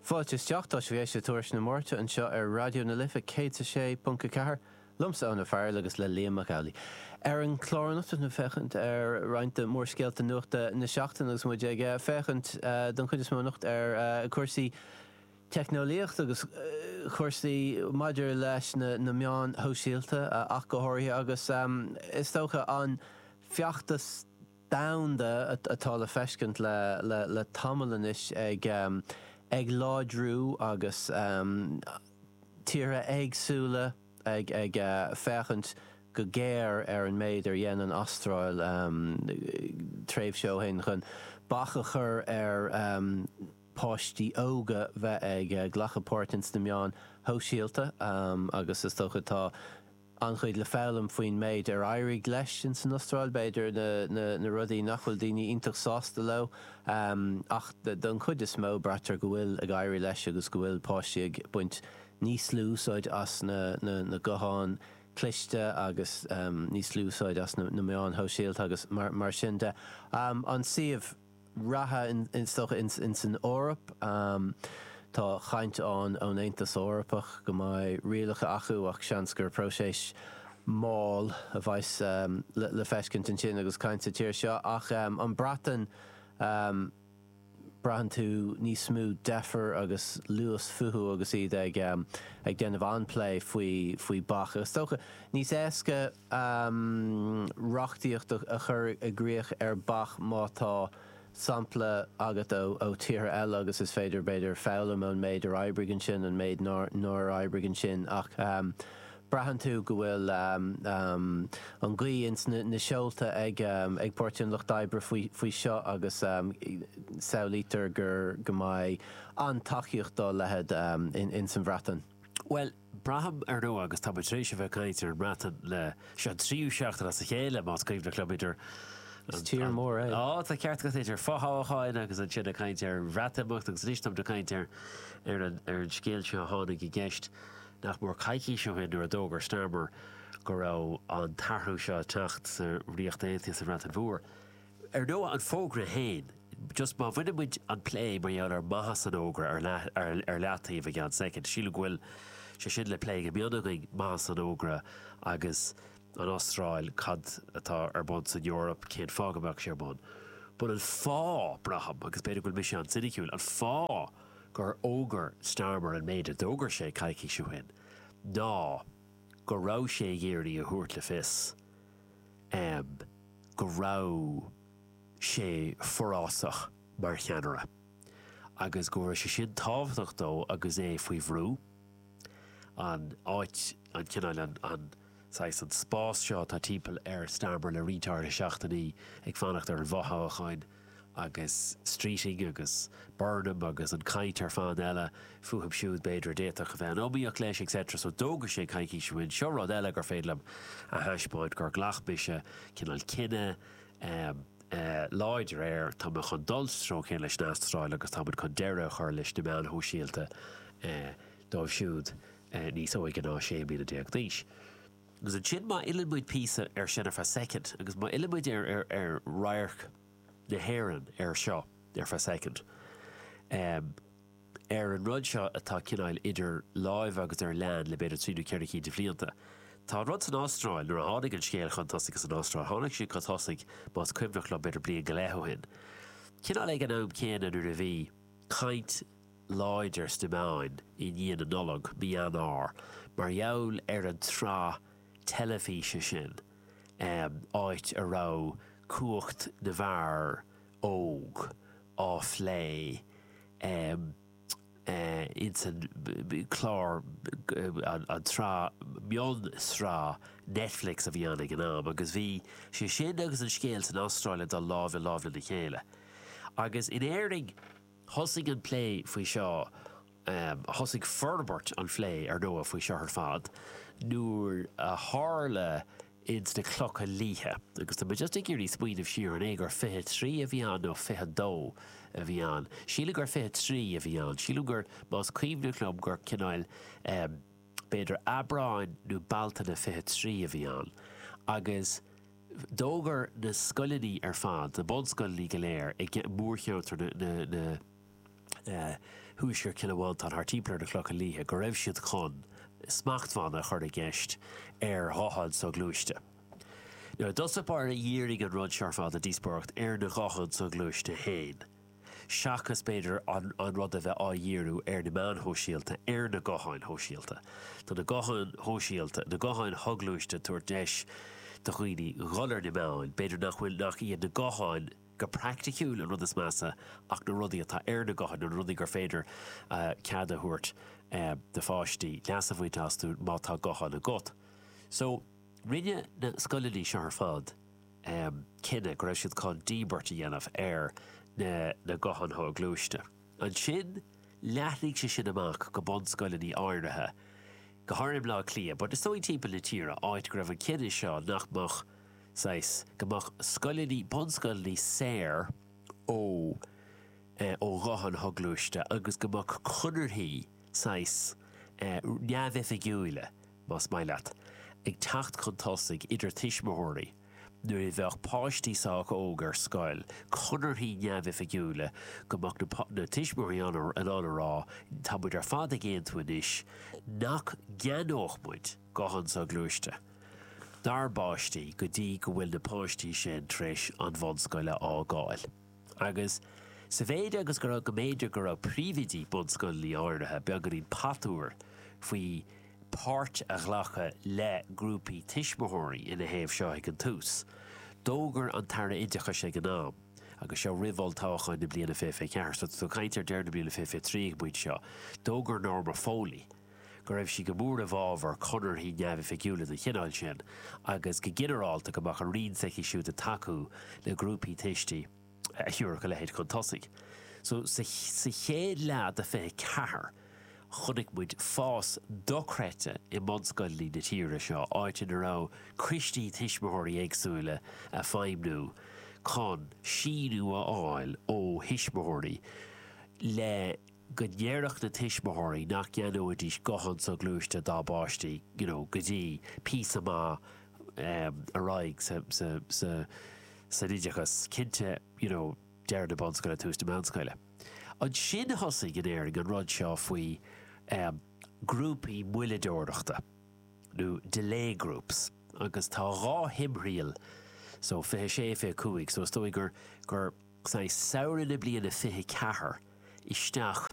Fáilte isteach, tá sibh ag éisteacht le Tuairisc na Máirte anseo ar Raidió na Life 106.4, liomsa Eoin Ó Fearghail agus le Liam Mac Amhlaigh. Ar an chlár anocht beimid ag féachaint ar roinnt de mhórscéalta nuachta na seachtaine agus muid ag féachaint don chuid is mó anocht ar chúrsaí teicneolaíochta agus chúrsaí maidir leis na meáin shóisialta ach go háirithe agus is dócha an feachtas domhanda atá le feiscint le tamall anois ag láidriú agus tíortha éagsúla ag féachaint go géar ar an méid ar dhein an Astráil tréimhse ó shin chun bac a chur ar pháistí óga bheith ag glacadh páirt ins na meáin shóisialta agus is dócha tá an-chuid le foghlaim faoin méid ar éirigh leis insan Astráil, b'fhéidir, na rudaí nach bhfuil daoine iontach sásta leo. Ach don chuid is mó, braitear go bhfuil ag éirí leis agus go bhfuil páistí ag baint níos lú úsáid as na gutháin chliste agus níos lú úsáid as na meáin shóisialta agus mar sin de. An suíomh. reatha is dócha insan Eoraip. Tá caint ann ón Aontas Eorpach go mbeidh rialacha acu ach seans gur próiseas mall a bheas le feiscint ansin agus caint sa tír seo. Ach an Breatain, braitheann tú níos mó deifre agus luas fúthu agus iad ag déanamh an-phlé faoi, faoi bac. Is dócha níos éasca. reachtaíocht a chur i gcrích ar bac má tá sampla agat ó tíortha eile agus is féidir, b'fhéidir, foghlaim ón méid ar oibrigh ansin, an méid nár oibrigh ansin ach braitheann tú go bhfuil an ghaoth ins na seolta ag Páirtí an Lucht Oibre faoi faoi seo agus samhlaítear gur go mbeidh an-tacaíocht dá leithéid insan Bhreatain. Bhuel, Braithim, ar ndóigh, agus táimid tar éis a bheith ag caint ar an mBreatain le. Seo an tríú seachtain as a chéile, más cuimhneach liom, idir an. Is tír mór é. Á, tá ceart agat, idir fothoghcháin agus ansin ag caint ar an Bhreatimeacht agus anois táimid ag caint ar an scéal seo a tháinig i gceist nach mór coicís ó shin nuair a d'fhógair Starmer go raibh an t-athrú seo ag teacht sa Ríocht Aontaithe, sa Bhreatain Mhór. Ar ndóigh, an fógra féin, just má bhaineann muid an plé mar gheall ar mhaitheas an fhógra ar leataobh i gcomhair soicind, sílim go bhfuil sé sin le plé go mion againn, maitheas an fhógra agus an Astráil, cad atá ar bun san Eoraip, cén fáth go mbeadh sé ar bun. Bhuel, an fáth, braithim, agus b'fhéidir go bhfuil mise an-soiniciúil, an fáth gur fhógair Starmer an méid a d'fhógair sé coicís ó shin ná go raibh sé ag iarraidh a thabhairt le fios, amh, go raibh sé forásach mar cheannaire agus go raibh sé sin tábhachtach dó agus é faoi bhrú, an áit, an cineál, an saghas, an spás seo atá timpeall ar Starmer le roinnt áirithe seachtainí ag fanacht ar an bhfothoghchán. agus Streeting agus Burnham agus an chaint ar fad eile fúthu siúd, b'fhéidir, a d'fhéadfadh a bheith in iomaíocht leis, etc. so d'fhógair sé coicís ó shin, seo rud eile gur féidir liom a thaispeáint, gur ghlac mise cineál cinneadh láidir air, tá mé chun dul sa treo céanna leis an Astráil agus tá muid chun deireadh a chur leis na meáin shóisialta dóibh siúd níos óige ná 16 mbliana d'aois. Agus ansin má fhilleann muid píosa ar sin ar feadh soicind agus má fhilleann muid ar radharc na hÉireann air seo ar feadh soicind, ar an rud seo atá cineál idir láimhe agus ar lean le b'fhéidir trí nó ceithre cinn de bhlianta, tá an rud san Astráil, nuair a tháinig an scéal chun tosaigh san Astráil, tháinig sé chun tosaigh, más cuimhneach liom, b'fhéidir bliain go leith ó shin, cineál ag an am céanna nuair a bhí caint, láidir sna meáin i ndiaidh na Nollag, mí Eanáir, mar gheall ar an tsraith teilifíse sin, áit a raibh cumhacht na bhfear óg á phlé ins an chlár, an tsraith, mion-sraith Netflix a bhí ann ag an am, agus bhí sé sin agus an scéal san Astráil ag dul lámh i lámh lena chéile. Agus in Éirinn. Thosaigh an plé faoi seo, thosaigh forbairt an phlé, ar ndóigh, faoi seo ar fad nuair a tharla ins na Clocha Liatha, agus tá mé just ag iarraidh smaoineamh siar, an é gur fiche a trí a bhí ann nó fiche a dó a bhí ann? Sílim gur fiche a trí a bhí ann. Sílim gur, más cuimhneach liom, gur cineál b'fhéidir Aibreán nó Bealtaine fiche a trí a bhí ann agus, D'fhógair na scoileanna ar fad, na bunscoileanna go léir i mórcheantar thuaisceart Chill Mhantáin thar timpeall ar na Clocha Liatha go raibh siad chun smachtbhanna a chur i gceist ar ghutháin shoghluaiste. Nó i dtús báire dhírigh an rud seo ar fad, an díospóireacht, ar na gutháin shoghluaiste féin. seachas b'fhéidir an rud a bheith á dhíriú ar na meáin shóisialta, ar na gutháin shóisialta. Tá na gutháin shóisialta, na gutháin shoghluaiste ag tabhairt deis do dhaoine dhul ar na meáin, b'fhéidir nach bhfuil, nach iad na gutháin go pairticiúil an rud is measa ach na rudaí atá ar na gutháin, na rudaí gur féidir cead a thabhairt do pháistí leas a bhaint astu má tá guthán agat. So, rinne na scoileanna seo ar fad, cinneadh go raibh siad chun díbirt a dhéanamh ar na gutháin shoghluaiste. Ansin, leathnaigh sé sin amach go bunscoileanna áirithe, go háirithe i mBleá Cliath, but is dóigh timpeall na tíre, áit go raibh an cinneadh seo nach mbeadh, saghas, go mbeadh scoileanna, bunscoileanna saor ó, eh, ó ghutháin shoghluaiste agus go mbeadh conarthaí, saghas, eh, neamhoifigiúila, más maith leat, ag teacht chun tosaigh idir tuismitheoirí nuair a bheadh páistí sách óg ar scoil, conarthaí neamhoifigiúla go mbeadh na tuismitheoirí in ann a rá, tá muid ar fad ag aontú anois nach gceannódh muid guthán soghluaiste dár bpáistí go dtí go bhfuil na páistí sin tar éis an bhunscoil a fhágáil. Agus sa mhéid agus go raibh, go mb'fhéidir go raibh príomhoidí bunscoileanna áirithe beagáinín patuar faoi páirt a ghlacadh le grúpaí tuismitheoirí ina thaobh seo ag an tús, d'fhógair an tAire Oideachais ag an am, agus seo roimh olltoghcháin na bliana 2024, so tá tú ag caint ar deireadh na bliana 2023 ag an bpointe seo, d'fhógair Norma Foley, go raibh sí go mór i bhfabhar conarthaí neamhoifigiúla den chineál sin agus, go ginearálta, go mbeadh an roinn s'aici siúd ag tacú le grúpaí tuistí a thiúrfadh a leithéid chun tosaigh. So, sa chéad leath de 24, chonaic muid fás dochreidte i mbunscoileanna na tíre seo, áit ina raibh coistí tuismitheoirí éagsúla ag feidhmniú chun síniú a fháil ó thuismitheoirí le, go ndéarfadh na tuismitheoirí nach gceannóidís guthán soghluaiste dá bpáistí, you know, go dtí píosa maith ar aghaidh sa, sa, sa, san oideachas, cinnte, you know, deireadh na bunscoile, tús na meánscoile. Ansin thosaigh in Éirinn an rud seo faoi ghrúpaí moilleadóireachta, nó delay groups, agus tá dhá thimthriall, so 26, 25, so is dóigh gur, gur, I samhradh na bliana 24 isteach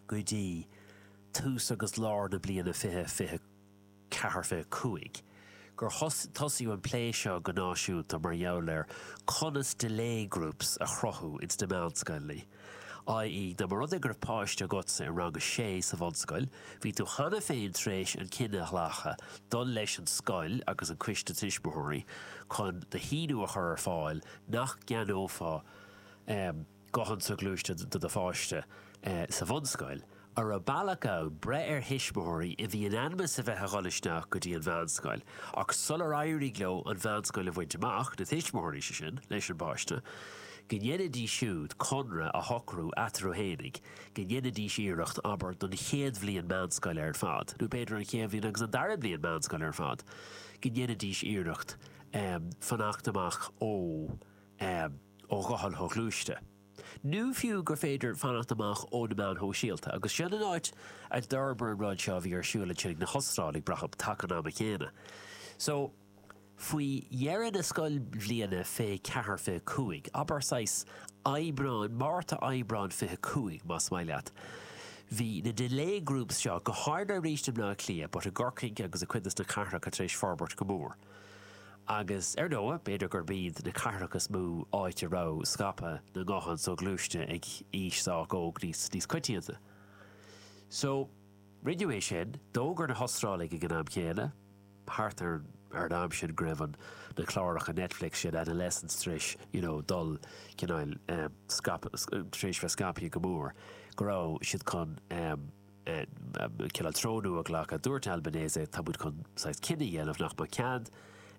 go dtí tús agus lár na bliana 24, 25 gur tosaíodh an plé seo go náisiúnta mar gheall ar conas 'delay groups' a chruthú ins na meánscoileanna, i.e. dá mba rud é go raibh páiste agatsa i rang a sé sa bhunscoil, bhí tú cheana féin tar éis an cinneadh a ghlacadh glacadh leis an scoil agus an coiste tuismitheoirí chun do shíniú a chur ar fáil nach gceannófá guthán soghluaiste do do pháiste sa bhunscoil, an raibh bealach ann breith ar thuismitheoirí a bhí in ainm is a bheith a dhul isteach go dtí an mheánscoil ach sular éirigh leo an mheánscoil a bhaint amach, na tuismitheoirí, sé sin, leis an bpáiste, go ndéanfaidís siúd conradh a shocrú eatarthu fhéinig go ndéanfaidís iarracht, abair, don chéad bhliain meánscoile ar fad, nó b'fhéidir an chéad bhliain agus an dara bliain meánscoile ar fad, go ndéanfaidís iarracht. um fanacht amach ó um ó ghutháin shoghluaiste, nó fiú gur féidir fanacht amach ó na meáin shóisialta, agus seo an áit a d'fhorbair an rud seo a bhí ar siúl ansin ag na hOstráiligh, braithim, taca an ama chéanna. So, faoi dheireadh na scoilbhliana fiche ceathair, fiche cúig, abair saghas Aibreán, Márta, Aibreán fiche cúig, más maith leat, bhí na delay groups seo, go háirithe arís i mBleá Cliath, but i gCorcaigh agus i gcuid de sna cathracha tar éis forbairt go mór. Agus ar ndóigh, b'fhéidir gurb iad na cathracha is mó áit a raibh scaipeadh na nguthán soghluaiste ag aois sách óg níos coitianta. So, rinneadh é sin. D'fhógair na hAstrálaigh ag an am chéanna, thart ar an am sin, go raibh na cláracha Netflix sin, Adolescence, tar éis, you know, dul, cineál, eh, scaipeadh, tar éis bheith scaipthe go mór, go raibh siad chun, eh, Cineál treo nua a ghlacadh. Dúirt Albanese, tá muid chun saghas cinneadh a dhéanamh nach mbeadh cead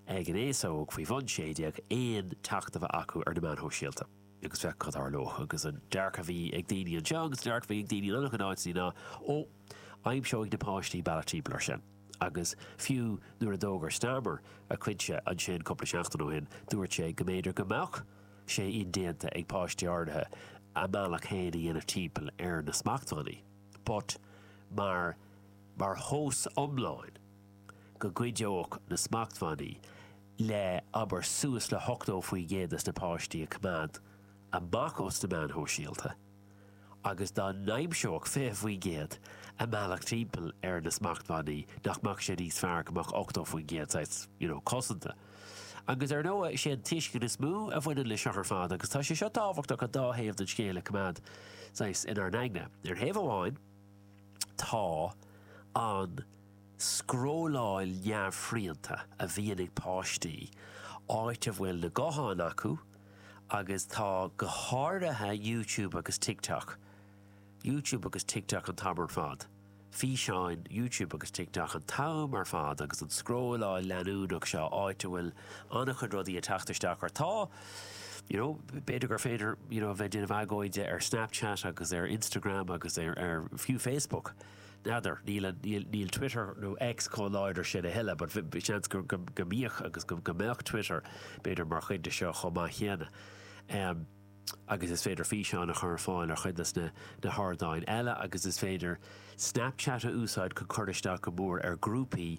ag an aos óg faoi bhun sé déag aon teacht a bheith acu ar na meáin shóisialta. Agus féach cad tharlódh. Agus an dearcadh a bhí ag daoine anseo agus an dearcadh a bhí ag daoine in an-chuid áiteanna ná, ó, aimseoidh na páistí bealach timpeall ar sin. Agus fiú nuair a d'fhógair Starmer a chuid sin ansin cúpla seachtain ó shin, dúirt sé go mb'fhéidir go mbeadh, sé indéanta ag páistí áirithe a mbealach féin a dhéanamh timpeall ar na smachtbhannaí, but mar mar thomhas iomlán, go gcuideodh na smachtbhannaí le, abair, suas le hochtó faoin gcéad de na páistí a choimeád amach os na meáin shóisialta, agus dá n-aimseodh 20% a mbealach timpeall ar na smachtbhannaí nach mbeadh sé níos fearr go mbeadh 80% saghas, you know, cosanta. Agus ar ndóigh, sé an tuiscint is mó a bhaineann le seo ar fad agus tá sé seo tábhachtach an dá thaobh den scéal a coimeád saghas inár n-aigne. Ar thaobh amháin tá an scrolláil neamhshrianta a bhíonn ag páistí, áit a bhfuil na gutháin acu, agus tá go háirithe YouTube agus TikTok, YouTube agus TikTok an t-am ar fad, físeáin YouTube agus TikTok an t-am ar fad agus an scrolláil leanúnach seo áit a bhfuil an-chuid rudaí ag teacht isteach ort. Tá, you know, b'fhéidir gur féidir, you know, a bheith ag déanamh éagóra ar Snapchat agus ar Instagram agus ar, ar, fiú Facebook. N'fheadar. Níl Twitter nó X chomh láidir sin a thuilleadh, but seans go mbíodh agus go mbeadh Twitter, b'fhéidir, mar chuid de seo chomh maith céanna. Agus is féidir físeáin a chur ar fáil ar chuid de na hardáin eile agus is féidir Snapchat a úsáid chun cur isteach go mór ar ghrúpaí,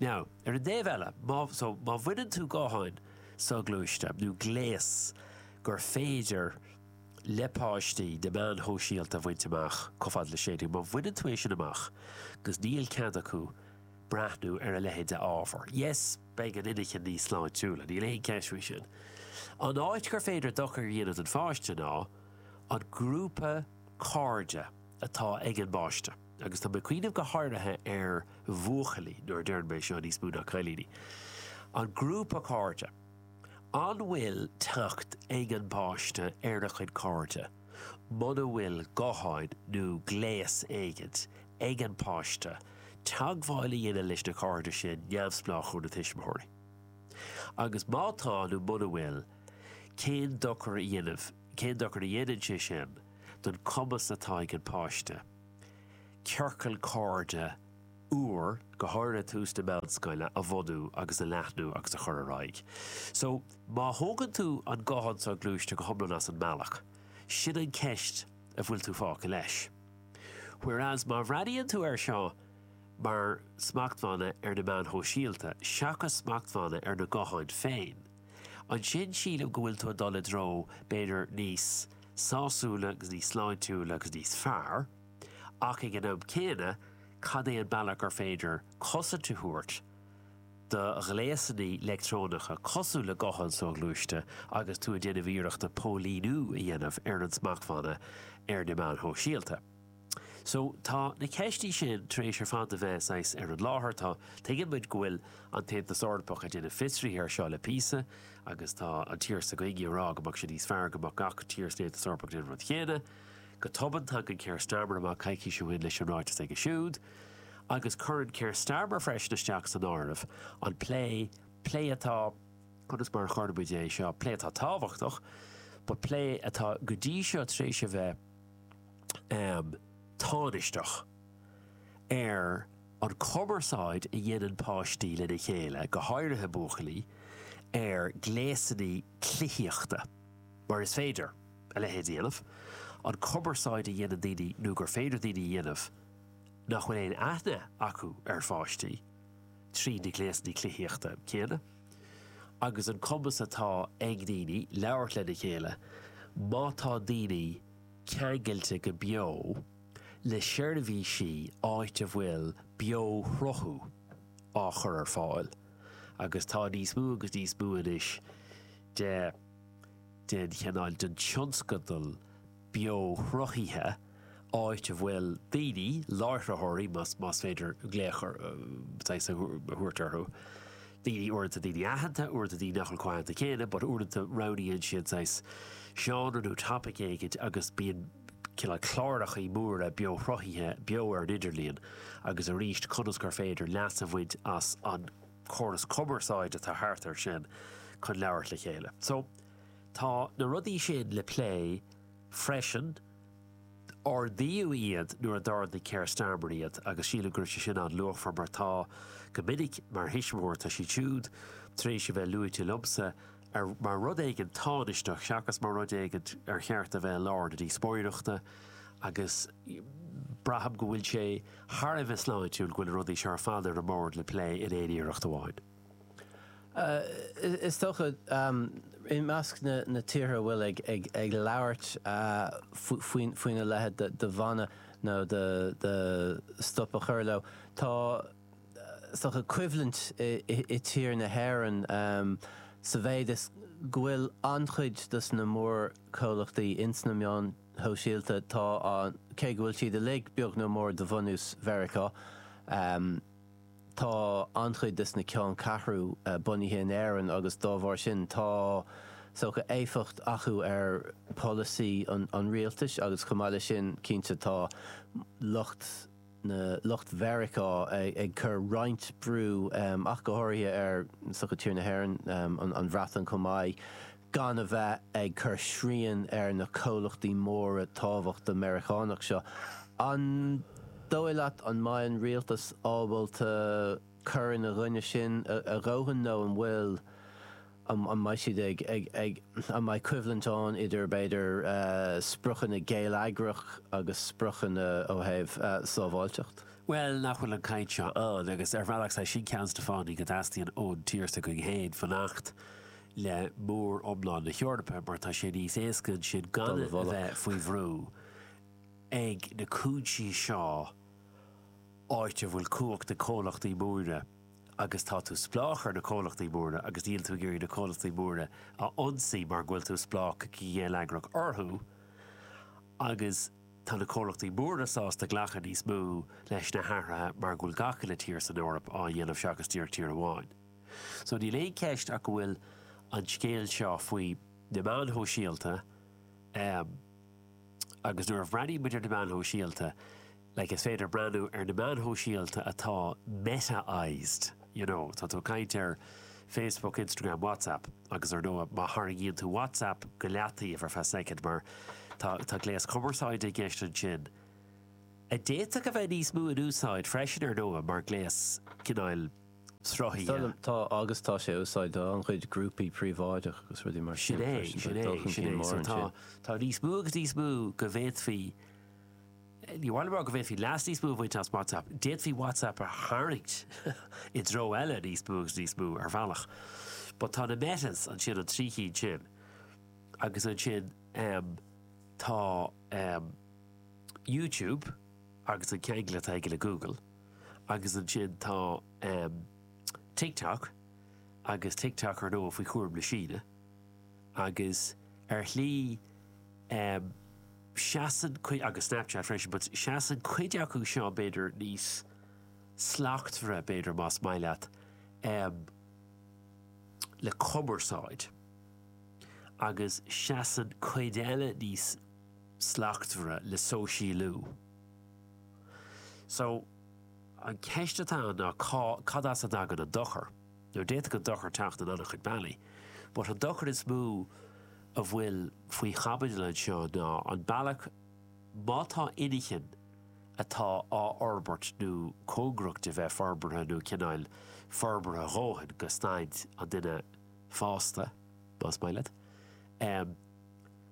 Now, ar an dtaobh eile, má, so, má bhaineann tú gutháin soghluaiste, nó gléas gur féidir le páistí na meáin shóisialta a bhaint amach chomh fada le sé déag, má bhaineann tú é sin amach agus níl cead acu breathnú ar a leithéid d'ábhar, yes, beidh an inchinn níos sláintiúla, níl aon cheist faoi sin. An áit gur féidir dochar a dhéanamh don pháiste ná an grúpa cairde atá ag an bpáiste. agus tá mé ag cuimhneamh go háirithe ar bhuachaillí, nuair a deireann mé seo, níos mó ná cailíní, an grúpa cairde, an bhfuil teacht ag an bpáiste ar a chuid cairde muna bhfuil guthán nó gléas éigint ag an bpáiste teagmháil a dhéanamh leis na cairde sin neamhspleách ó na tuismitheoirí? Agus má tá nó muna bhfuil, cén dochar a dhéanann, cén dochar a dhéanann sé sin don cumas atá ag an bpáiste? ciorcal cairde úr, go háirithe tús na bunscoile, a bhunú agus a leathnú agus a chur ar aghaidh. So, má thógann tú an guthán soghluaiste go hiomlán as an mbealach, sin an ceist a bhfuil tú fágtha leis. Whereas, má bhreathnaíonn tú air seo mar smachtbhanna ar na meáin shóisialta seachas smachtbhanna ar na gutháin féin, Ansin sílim go bhfuil tú ag dul i dtreo, b'fhéidir, níos sásúla agus níos sláintiúla agus níos fearr, ach ag an am céanna, cad é an bealach gur féidir cosaint a thabhairt do ghléasanna leictreonacha cosúil le gutháin soghluaiste agus tú ag déanamh iarrachta póilíniú a dhéanamh ar an smachtbhanna ar na meáin shóisialta? So, tá na ceistí sin tar éis ar fad a bheith, saghas, ar an láthair. Tá, tuigeann muid go bhfuil an tAontas Eorpach ag déanamh fiosraithe air seo le píosa agus tá an tír s'againne ag rá go mbeadh sé níos fearr go mbeadh gach tír san Aontas Eorpach ag déanamh an rud chéanna. Go tobann, tagann Keir Starmer amach coicís ó shin leis an ráiteas aige siúd agus cuireann Keir Starmer freisin isteach san áireamh an plé, plé atá, conas mar a chuirfeadh muid é seo, plé atá tábhachtach but plé atá go dtí seo tar éis a bheith, um tánaisteach ar an chumarsáid a dhéanann páistí lena chéile, go háirithe buachaillí, ar ghléasanna cluichíochta, mar is féidir a leithéid a dhéanamh, an cumarsáid a dhéanann daoine nó gur féidir daoine a dhéanamh nach bhfuil aon aithne acu ar pháistí tríd na gléasanna cluichíochta céanna, agus an cumas atá ag daoine labhairt lena chéile má tá daoine ceangailte go beo le seirbhísí áit a bhfuil beoshruthú á chur ar fáil agus tá níos mó agus níos mó anois de den chineál de thionscadail bheoshruthaithe áit a bhfuil daoine, láithreoirí más féidir glaoch orthusan a thabhairt orthu. daoine uaireanta, daoine aitheanta, uaireanta daoine nach bhfuil chomh haitheanta céanna, but uaireanta roghnaíonn siad saghas seánra nó topaic éigin agus bíonn cineál clárachaí móra beoshruthaithe beo ar an idirlíon agus arís conas gur féidir leas a bhaint as an gcóras cumarsáid atá thart air sin chun labhairt le chéile. So, tá na rudaí sin le plé freisin. ardaíodh iad nuair a d'ardaigh Keir Starmer iad agus sílim go raibh sé sin an-luachmhar mar tá, go minic, mar thuismitheoir, tá siad siúd tar éis a bheith luaite liomsa ar, mar rud éigin tánaisteach seachas mar rud éigin ar cheart a bheith i lár na díospóireachta agus braithim go bhfuil sé thar a bheith sláintiúil go bhfuil na rudaí seo ar fad ar an mbord le plé in éineacht amháin. Is dócha, i measc na tíortha atá ag labhairt faoina leithéid de bhan nó de stop a chur leo, tá, is dócha, coimhlint i tír na hÉireann sa mhéid is go bhfuil an-chuid dos na mórchomhlachtaí ins na meáin shóisialta, tá an, cé go bhfuil siad uilig beag nó mór de bhunús Mheiriceá, Tá an-chuid dos na ceanncheathrú bunaithe in Éirinn agus dá bharr sin tá, is dócha, éifeacht acu ar pholasaí an rialtais agus chomh maith leis sin, cinnte, tá lucht na, lucht Mheiriceá, ag cur roinnt brú ach go háirithe ar, is dócha, tír na hÉireann, an Bhreatain chomh maith. gan a bheith ag cur srian ar na comhlachtaí móra tábhachtacha Meiriceánacha seo, an dóigh leat an mbeidh an rialtas ábalta cur ina gcoinne sin a dhóthain nó an bhfuil, an mbeidh siad ag, ag, an mbeidh coimhlint ann idir b'fhéidir spriocanna geilleagrach agus spriocanna ó thaobh sábháilteacht? Bhuel, nach bhfuil an chaint seo ann, agus ar bhealach, is é sin ceann des na fáthanna, go dteastaíonn ón tír s'againn fhéin fanacht le mór-iomlán na hEorpa mar tá sé níos éasca ansin gan a bheith faoi bhrú ag na cúinsí seo áit a bhfuil cumhacht ag comhlachtaí móra agus tá tú spleách ar na comhlachtaí móra agus níl tú ag iarraidh na comhlachtaí móra a ionsaí mar go bhfuil tú spleách go geilleagrach orthu agus tá na comhlachtaí móra sásta glacadh níos mó leis na hathruithe mar go bhfuil gach uile thír san Eoraip á dhéanamh seachas díreach tír amháin. So níl aon cheist ach go bhfuil an scéal seo faoi na meáin shóisialta um agus nuair a bhreathnaíonn muid ar na meáin shóisialta, like is féidir breathnú ar na meáin shóisialta atá metaised, you know, tá tú ag caint ar Facebook, Instagram, WhatsApp agus ar ndóigh má tharraingíonn tú WhatsApp go leataobh ar feadh soicind mar tá, tá gléas cumarsáide i gceist ansin a d'fhéadfadh a bheith níos mó in úsáid freisin ar ndóigh mar gléas cineáil sruthaithe. Tá, agus tá sé á úsáid do an-chuid grúpaí príobháideach agus rudaí mar sin freisin. Tá dul chun cinn mór ansin. Tá níos mó agus níos mó go bhféadfaí, ní hamháin go bhféadfaí leas níos mó a bhaint as WhatsApp, d'fhéadfaí WhatsApp a tharraingt i dtreo eile níos mó agus níos mó ar bhealach. But tá na Metas ansin, an trí chinn sin, agus ansin tá YouTube agus an ceangal atá aige le Google. agus ansin tá TikTok agus TikTok ar ndóigh faoi chúram na Síne agus ar shlí seasann cuid, agus Snapchat freisin, but seasann cuid acu seo b'fhéidir níos slachtmhaire b'fhéidir más maith leat um, le cumarsáid agus seasann cuid eile níos slachtmhaire le sóisialú. So, an cheist atá ann ná cá, cad as a dtagann an dochar? Now, d'fhéadfadh an dochar teacht in an-chuid bealaí, but an dochar is mó a bhfuil faoi chaibidil anseo ná an bealach, má tá inchinn atá á fhorbairt nó cóngarach do bheith forbartha nó cineál forbartha a dhóthain go staid an duine fásta, más maith leat, em,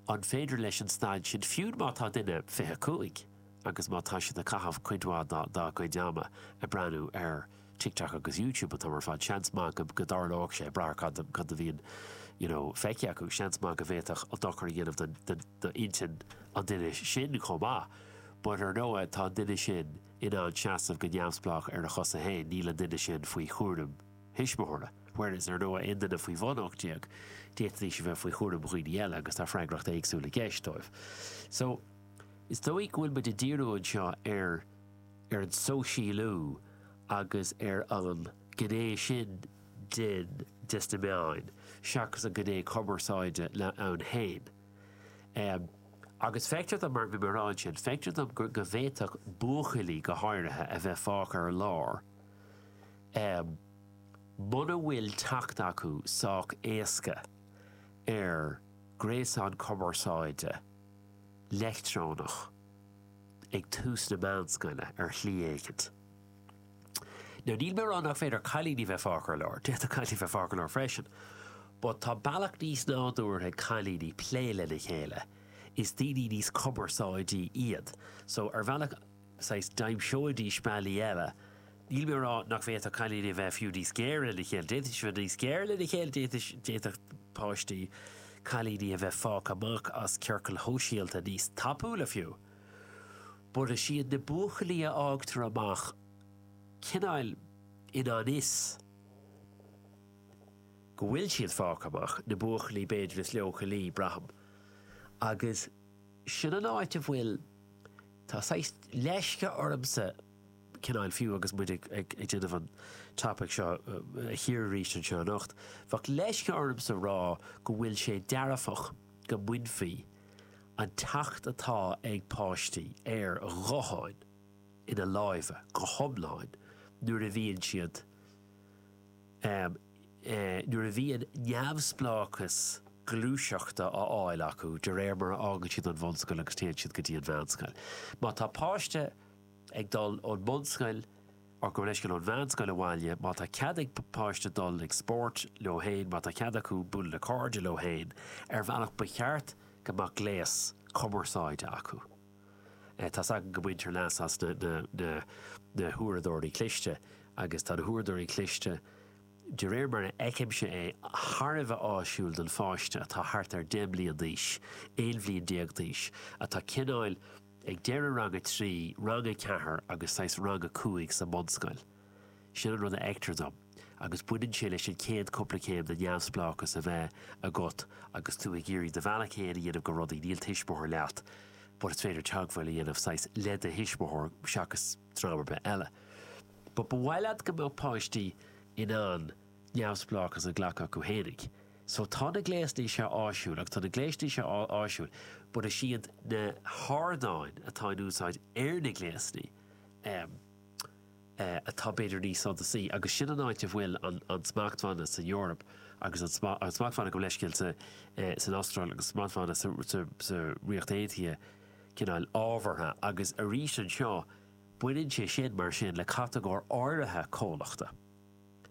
an féidir leis an staid sin, fiú má tá duine fiche cúig. agus má tá siad ag caitheamh cuid mhaith dá gcuid ama ag breathnú ar TikTok agus YouTube an t-am ar fad, seans maith go dtarlódh sé, ag brath ar cad a bhíonn you know feicthe acu, seans maith go bhféadfadh sé dochar a dhéanamh d'intinn an duine sin chomh maith. But ar ndóigh, tá an duine sin in ann seasamh go neamhspleách ar a chosa féin, níl an duine sin faoi chúram thuismitheora. Whereas, ar ndóigh, aon duine faoi bhun 18, d'fhéadfaidís a bheith faoi chúram dhaoine eile agus tá freagracht éagsúil i gceist dóibh. So. Is dóigh go bhfuil muid ag díriú anseo ar ar an sóisialú agus ar an gné sin den des na meáin seachas an gné cumarsáide ann féin. Agus feictear dom, mar bhí mé a rá ansin, feictear dom go go bhféadfadh buachaillí go háirithe a bheith fágtha ar lár muna bhfuil teacht acu sách éasca ar gréasán cumarsáide, leictreonach ag tús na meánscoile ar shlí éicint. Now, níl mé ag rá nach féidir cailíní bheith fágtha ar lár, d'fhéadfadh cailíní bheith fágtha ar lár freisin, but tá bealach níos nádúrtha ag cailíní plé lena chéile, is daoine níos cumarsáidí iad, so ar bhealach, saghas d'aimseoidís bealaí eile. Níl mé a rá nach bhféadfadh cailíní a bheith fiú níos géire lena chéile, d'fhéadfadh siad a bheith níos géire lena chéile, d'fhéadfadh, d'fhéadfadh páistí, cailíní a bheith fágtha amach as ciorcail shóisialta níos tapúla fiú. But is iad na buachaillí a fhágtar amach cineáil i ngan fhios go bhfuil siad fágtha amach, na buachaillí b'fhéidir is leochailí, braithim. Agus. Sin an áit a bhfuil, tá saghas leisce ormsa, cineál, fiú agus muid ag déanamh an topaic seo, a chíoradh arís anseo anocht, bheadh leisce ormsa rá go bhfuil sé dearfach go mbainfí an teacht atá ag páistí ar ghutháin láimhe go hiomlán nuair a bhíonn siad Ámh, nuair a bhíonn neamhspleáchas gluaiseachta á fháil acu de réir mar a fhágann siad an bhunscoil agus téann siad go dtí an mheánscoil, má tá páiste ag dul ón mbunscoil gabh mo leithscéal ón mheánscoil abhaile, má tá cead ag páiste dul ag spórt leo féin, má tá cead acu bualadh le cairde leo féin, ar bhealach ba cheart go mbeadh gléas cumarsáide acu. Tá's agam go mbaintear leas as na huaireadóirí cliste, agus tá na huaireadóirí cliste, de réir mar a fheicimse é, thar a bheith áisiúil don pháiste atá thart ar deich mblian d'aois, aon bhliain déag d'aois, atá cineáil ag deireadh rang a trí, rang a ceathair agus saghas rang a cúig sa mbunscoil. Sin an rud a fheictear dom, agus baineann sé leis an chéad chúpla céim de neamhspleáchas a bheith agat agus tú ag iarraidh do bhealach fhéin a dhéanamh go rudaí, níl tuismitheoir leat but is féidir teagmháil a dhéanamh, saghas, le do thuismitheoir seachas dream ar bith eile. But ba mhaith leat go mbeadh páistí in ann neamhspleáchas a ghlacadh acu fhéinig. So tá na gléasanna seo áisiúil agus tá na gléasanna seo áisiúil but is iad na hardáin atá in úsáid ar na gléasanna, em, atá b'fhéidir níos suntasaí, agus sin an áit a bhfuil an smachtbhanna san Eoraip agus an smachtbhanna gabh mo leithscéal san Astráil agus an smachtbhanna sa Ríocht Aontaithe cineál ábhartha, agus arís anseo baineann sé sin mar sin le catagóir áirithe comhlachta.